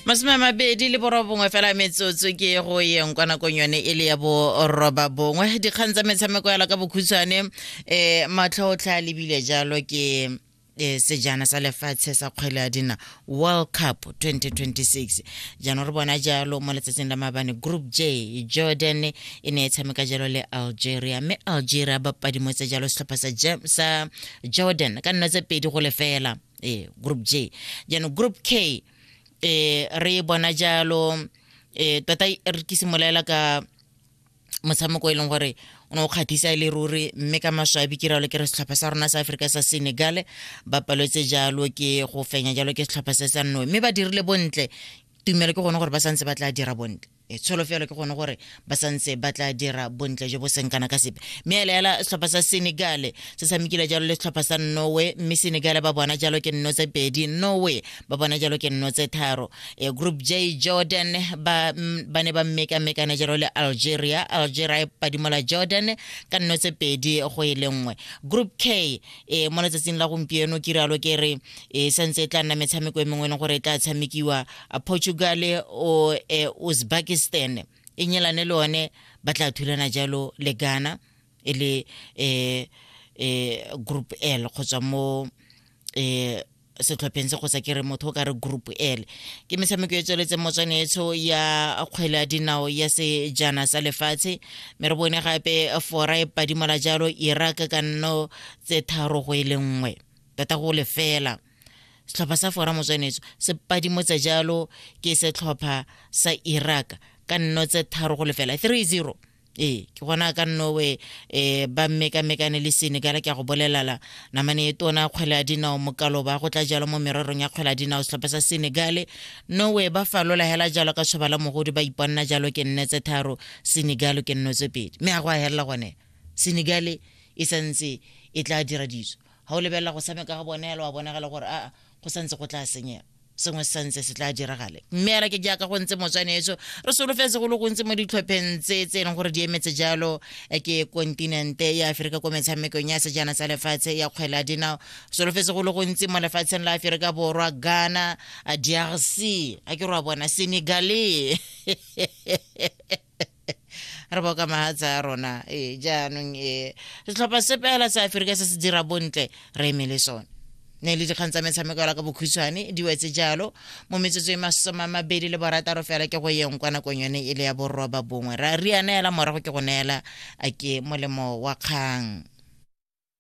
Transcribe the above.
masome a mabedi le borobongwe fela metsotso ke go yeng kwa nakong yone e le ya boroba bongwe dikgang tsa metshameko yala ka bokhutshwane um eh, matlhotlha a lebile jalo ke eh, sejana sa lefatshe sa kgwele ya dina world cup 2026 jaanong re bona jalo mo letsatsing la mabane group j jordan e ne e tshameka jalo le algeria mme algeria ba padimotse jalo setlhopha sa, sa jordan ka nna tse pedi go lefela eh, group j jaanong group k eh, re e bona jalo eh, tota re ke simolaela ka motshameko e leng gore o ne o kgathisa e le ruri mme ka maswabi ke ralo ke re setlhopha sa rona sa aforika sa senegal ba paletse jalo ke go fenya jalo ke setlhopha se sa nnoe mme ba dirile bontle tumelo ke gone gore ba santse ba tla dira bontle e tsholofelo ke gone gore ba santse ba tla dira bontle jo bo seng kana ka sepe mme a elaela setlhopha sa senegale se tshamekile jalo le setlhopha sa norway mme senegale ba bona jalo ke nno tse pedi norway ba bona jalo ke nno tse tharo e group j jordan ba ba ne ba mmekamekane jalo le algeria algeria e padimola jordan ka nno tse pedi go e le nngwe group k e mo letsatsing la gompieno ke rialo ke re e santse e tla nna metshameko e mengwe e leng gore e tla tshamekiwa a portugal o e, uzbekistan e nyelane le one ba tla thulana jalo le ghana e le um um group l go tswa mo um setlhopheng se go sa kere motho o ka re group l ke metshameko e tsweletseng motswanetsho ya kgwele ya dinao ya sejana sa lefatshe mme re bone gape fora e padimola jalo iraq ka nno tse tharo go e le nngwe tota go lefela setlhopha sa fora motswenetso se padimotse jalo ke setlhopha sa iraq ka nno tse tharo go lefela 30 ee ke gona ka nnowe um ba mmekamekane le senegal ke ya go bolelala namane e tona kgwele ya dinao mokalo ba go tla jalo mo mererong ya kgwele ya dinao setlhopha sa senegale nowe ba falola hela jalo ka tshoba la mogodi ba iponela jalo ke nne tse tharo senegale ke nno tse pedi mme a go a helela gone senegale e santse e tla dira ditso ga o lebelela go tshameka ga bone yalo wa bonagala gore aa go santse go tla senyega sengwe se santse se tla diragale mme ela ke jaaka go ntse motswaneetso re solofetse go le gontsi mo ditlhopheng tse tse e leng gore di emetse jalo eh, ke kontinente ya aferika ko metshamekong ya sejana sa lefatshe ya kgwela dinao solofetse go le gontsi mo lefatsheng la aferika borwa ghana eh, drc a ke re wa bona senegale re boka mahatsa a rona ee jaanong ee setlhopha se pela sa aferika se se dira bontle re eme le sone ne le dikgang tsa metshameko yala ka bokhutshwane di wetse jalo mo metsotso e masoma mabedi le borataro fela ke go yeng kwa nakong yone e le ya borroba bongwe ra riana yala morago ke go neela a ke molemo wa kgang